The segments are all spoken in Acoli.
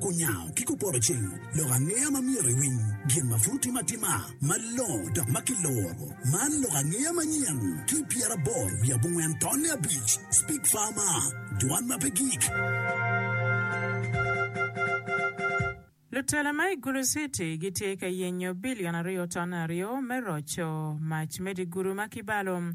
Kunyango ki kupoto cing, lok angeya ma myero iwiny, gin ma pud timo atima malongo dok ma kiloro. Man lok angeya manyen ki pyeraboro wiye abongwen tonne abic, Speak Farmer, Dwan ma pe gik. Lutela ma i Gulu City gitye ka yenyo bilion aryo tonne aryo me roco mac me digulu ma kibalo.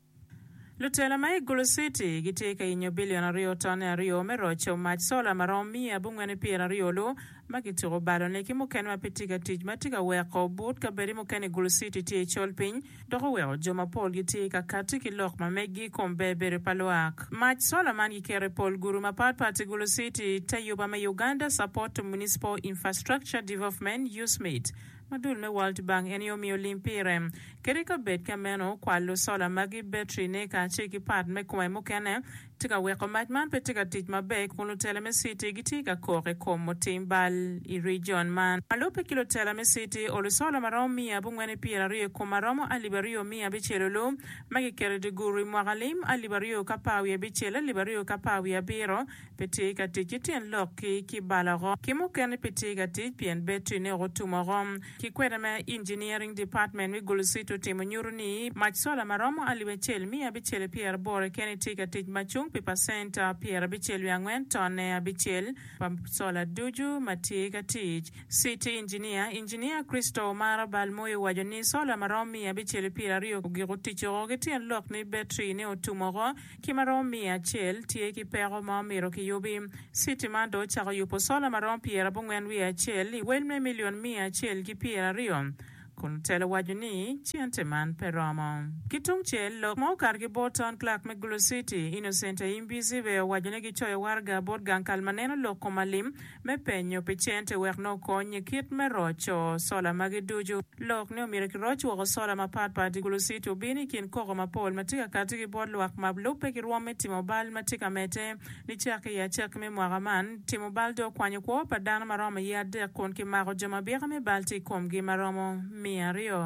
Lutela ma i Gulu Citi gitye ka yenyo bilion aryo tone aryo me roco mac sola ma romo miya abongwen ni pyera aryo lu ma kituko balo ne ki mukene ma pe tye ka tic ma tye ka weko but kabedi mukene i Gulu Citi tye i col piny dok oweko jo ma pol gitye ka kati ki lok ma meggi i kom ber bedo pa lwak. Mac sola man giketo i pol gudu ma pat pat i Gulu Citi. Te yuba me Uganda Support to Municipal Infrastructure Development, USMID, Ma dul me World Bank en aye omiyo lim pire. Kadi ka bed ka meno, kwalo sola magi, betri-ne, kacel ki pat me kome mukene tye ka weko mac man pe tye ka tic maber kun lutela me citi gitye ka kok i kom otim bal i rijon man. Ma lubbe ki lutela me citi, olu sola ma romo miya abongwen ki pyera aryo i kome romo alip aryo miya abicel olu ma kiketo i dye guru i mwaka lim alip aryo ki apar wiye abicel, alip aryo ki apar wiye abiro, Pe tye ka tic ki tyen lok ki ki bal oko. Ki mukene pe tye ka tic pien battery ne otum oko. Ki kwede ma Engineering Department me Gulu City otimo nyuto ni mac sola ma romo alip acel miya abicel i pyer aboro i kene tye ka tic ma cung pi pacent pyer abicel wiye angwen tonne abicel pa sola ducu ma tye ka tic. City Engineer, Engineer Christo Omara Balmoi owaco ni sola ma romo miya abicel i pyer aryo ogiko tic oko ki tyen lok ni battery ne otum oko. ki ma romo miya acel tye ki peko ma omito kiyubi. Citi man dong ocako yubo sola ma romo pyera abongwen wiye acel i wel me milion miya acel ki pyera aryo, kun otelo waco ni cente man pe romo. Ki tung cel, lok ma okato ki bot Town Clerk me Gulu Citi, Innocent Aimbizi bene owaco ni gicoyo waraga bot gang kal ma neno lok kom alim, me penyo pi cente wek nongo kony i kit me roco sola magi ducu. Lok ni omyero kiroc woko sola mapatpat i guluciti obino i kin koko mapol ma tye ka kati ki bot lwak ma lubbe ki rwom me timo bal ma tye ka medde. Nicaki i acakki me mwaka man, timo bal dong okwanyo kwo pa dano ma romo iye adek kun kimako jo ma bika me bal tye i komgi ma romo miya aryo.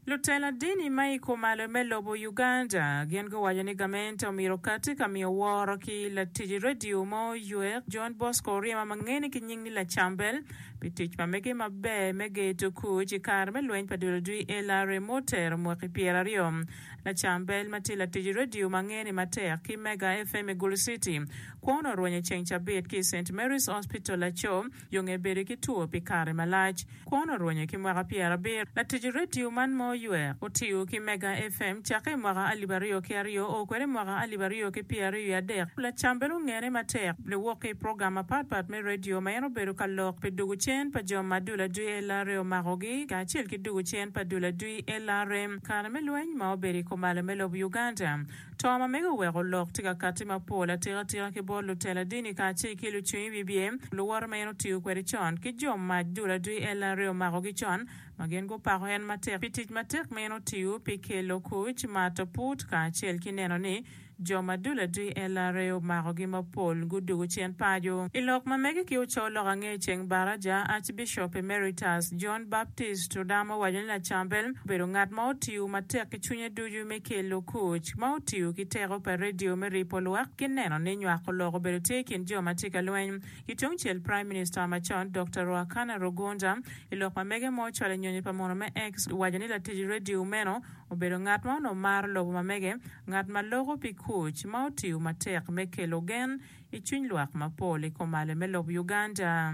Lutela dini ma i kumalo me lobo Uganda gin guwaco ni gamente omyero okati ka miyo woro ki latic radio mo Yuek John Bosco Oryema ma ngene ki nying ni Lacambel pi tic ma mege maber me geto kuc i kare me lweny pa dul odwi LRA ma otero mwaki pyera aryo. Lacambel ma tye latic radio ma ngene matek ki Mega FM i Gulu City kwone orwenyo ceng cabit ki i Saint Mary's Hospital laco Yo nge bedo ki two pi kare malac, kwon orwenyo ki mwaka pyerabiro. Latic redio man ma oywer, otiyo ki Mega FM cakke i mwaka alip aryo ki aryo, oo kwede i mwaka alip aryo ki pyeraryo i adek. Lacam bene ongene matek niwok ki i program mapatpat me redio ma en obedo ka lok pi dugu cen pa jo ma dul adwi LRA omakogi kacel ki dugu cen pa dul adwi LRM kare me lweny ma obedo i komalo me lobo Uganda. To ma mege oweko lok tye ka katti mapol atikatika ki bot lutela dini kacel ki lucwiny bibye, luwote ma en otiyo kwede con, ki jo mac dul adwi en laree omakogi con, ma gin gupako en matek pi tic matek ma en otiyo pi kelo kuc, mato put, kacel ki neno ni jo ma dul adwi en laree omakogi mapol gudugo cen paco. I lok ma mege ki oco lok ange ceng baraja, Archbishop Emeritus John Baptist Odama owaco ni Lacambel obedo ngat ma otiyo matek ki cwinye ducu me kelo kuc, ma otiyo ki teko pa redio me ripo lwak ki neno ni nywako lok obedo tye i kin jo ma tye ka lweny. Ki tung cel, Praim Minista macon, Dokta Ruacana Rugunda, i lok ma mege ma ocwalo i nyonyo pa munu me X, owaco ni latic redio meno obedo ngat ma onongo maro lobo ma mege, ngat ma loko pi kuc, ma otiyo matek me kelo gen i cwiny lwak mapol i kom ale me lobo Uganda.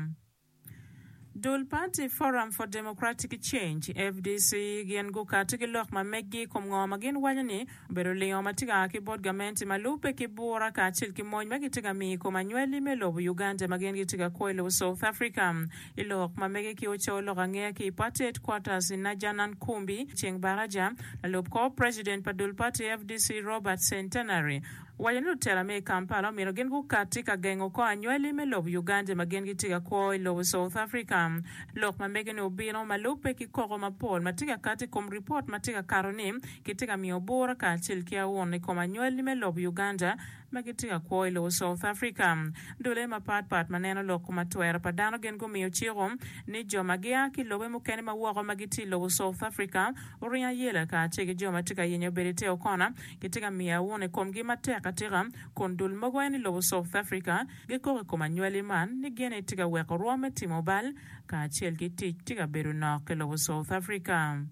Dul pati Forum for Democratic Change, fdc, gin gukato ki lok ma meggi i kom ngo ma gin waco ni obedo lingo ma tye ka a ki bot gamente ma lubbe ki bura kacel ki mony ma gitye ka miyo i kom anywali me lobo Uganda ma gin gitye ka kwo i lobo South Africa. I lok ma mege ki ocoyo lok angeya ki i Party Headquarters i Najanankumbi, Chengbaraja, lalub kor president pa dul pati fdc Robert Centenary, owaco ni lutela me i Kampala omyero gin gukatti ka gengo kor anywali me lobo Uganda ma gin gitye ka kwo i lobo South Africa. Lok ma mege-ni obino ma lubbe ki koko mapol ma tye ka kati i kom ripot ma tye ka kato ni kitye ka miyo bura kacel ki aun i kom anywali me lobo Uganda ma gitye ka kwo i lobo South Africa. Dule mapat pat ma neno lok ma twero pa dano gin gumiyo ciko ni jo ma gia ki lobe mukene ma woko ma gitye i lobo South Africa oringo ayela kacel ki jo ma tye ka yenyo bedo i te okona Gitye ka miyo awun i komgi matek atika, kun dul mogo en i lobo South Africa gikok i kom anywali man ni gin aye tye ka weko rwom me timo bal kacel ki tic tye ka bedo nok i lobo South Africa.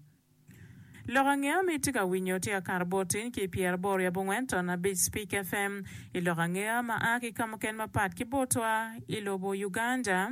Lok angeya ma itye ka winyo tye akato botiny ki pyera aboro i abongwen ton abic Speak FM i lok angeya ma a ki kamuken mapat ki botwa i lobo Uganda.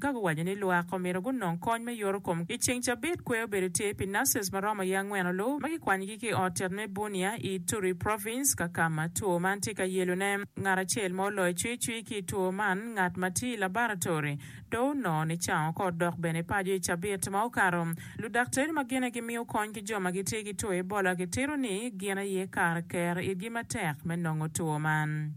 Ka guwaco ni lwak omyero gunong kony me yoto kom i ceng cabit, kwer obedo tye pi nurses ma romo i angwen olu ma kikwanyogi ki i ot tet me Bunia i Ituri Province ka kama two man tye ka yelo ne. Ngat acel ma oloyo cwi cwi ki i two man, ngat ma tye i labaratory do onongo ni cango ka odok bene paco i cabit ma okato. Ludaktari ma gine gimiyo kony ki jo ma gitye ki two Ebola gitito ni gin aye kare ker itgi matek me nongo two man.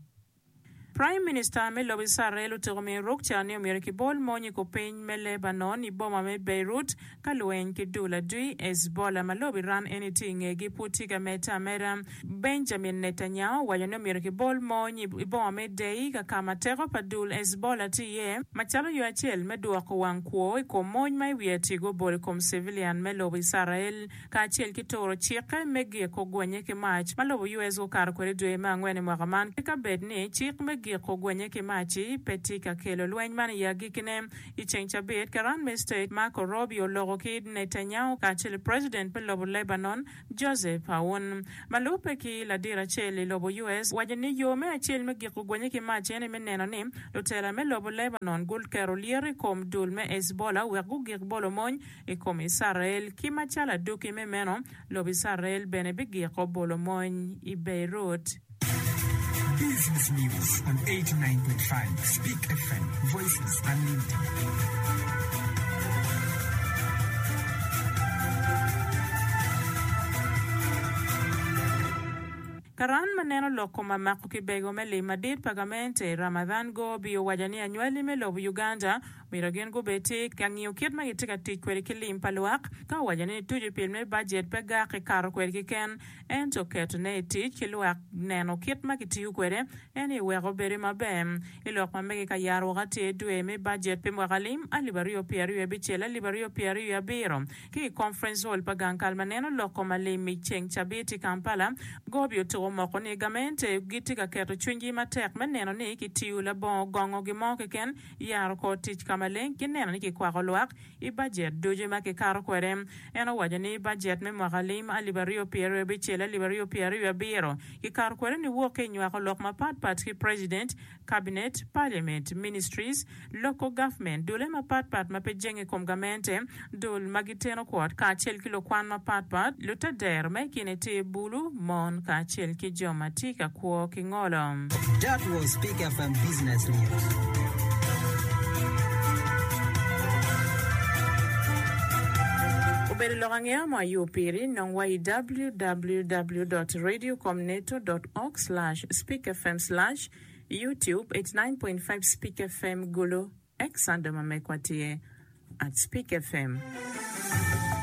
Praim Minista me lobo Icrael otiko miyo ruk ca ni omyero kibol mony i kor piny me Lebanon i boma me Beirut ka lweny ki dul adui Hezbollah ma lobo Iran eni tye i ngegi pud tye ka medde ameda. Benjamin Netanyahu owaco ni omyero kibol mony i boma me Deir ka ma teko pa dul Hezbollah tye iye macalo yo acel me dwoko wang kwo i kom mony ma i wiye tye gubolo i kom civilian me lobo Icrael. kacel ki turo cikke me giko gwenye ki mac ma lobo US gukato kwede dwe me angwen i mwaka man, ki ka bed ni cik me giko gwenye ki mac-ci pe tye ka kelo lweny man i agikine. I ceng cabit, Karan me State Marco Rubio oloko ki Netanyahu kacel ki president me lobo Lebanon, Joseph Aoun. Ma lubbe ki ladit acel i lobo US owaco ni yo me acel me giko gwenye ki mac en aye me neno ni lutela me lobo Lebanon guketo lyeto i kom dul me Hezbollah wek gugik bolo mony I kom Icrael, ki macalo adwogi me meno, lobo Icrael bene bigiko bolo mony i Beirut. Business News on 89.5 Speak FM, Voices Unlimited. Karan ma neno lok kom amako kibego me lim madit pa gamente i Ramadhan Gobi owaco ni anywali me lobo Uganda Myero gin gubed ki ka ngiyo kit ma gitye ka tic kwede ki lim pa lwak. Ka owaco ni tuco pil me bajet pe gak i kato kwede keken, ento ketone i tic ki lwak neno kit ma kitiyo kwede, en aye weko bedo maber. I lok ma mege ka yaro woko atir dwe me bajet pi mwaka alim alip aryo pye aryo abicel alip aryo pye aryo abiro ki i Conference Hall pa gang kal ma neno lok kom alim i ceng cabit i Kampala, Gobi otuko omoko ni gamente gitye ka keto cwinygi matek me neno ni kitiyo labongo gongo gin mo keken. yaro kor tic ka maleng ki neno ni kikwako lwak i bajet ducu ma kikato kwede. En owaco ni bajet me mwaka lim alip aryo pyer aryo abicel alip aryo pyer aryo abiro kikato kwede niwok ki i nywako lok mapat pat ki President, Cabinet, Parliament, Ministries, Local Government, dule mapat pat ma pe jenge i kom gamente, dul ma giteno kwot kacel ki lukwan mapatpat, lutadero me i kine tye bulu, mon kacel ki jo ma tye ka kwo ki ngolo. That was Peak FM Business News. Obedo lok angeya mo ayo piri, nong wa i www dot radio com neto dot org slash speak fm slash youtube eighty nine point five speak fm gulu. Ex Sando ma megwa tye at Spik FM.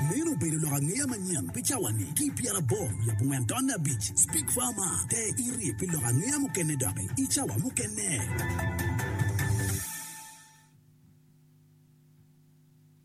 Meno obedo lok angeya manyen pi cawa-ni ki i pyera aboro wiye abongwen tonne abic. Spik Farmer, te iri pi lok angeya mukene doki i cawa mukene.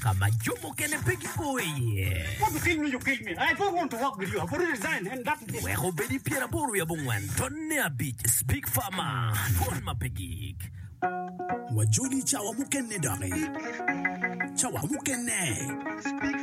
ka ma jo mukene pe gipo iye. Wek obed i pyeraboro wiye abongwen, tonne abic, Big Pharma, twon ma pe gik. Wajoli cawa mukene doki. Cawa mukene.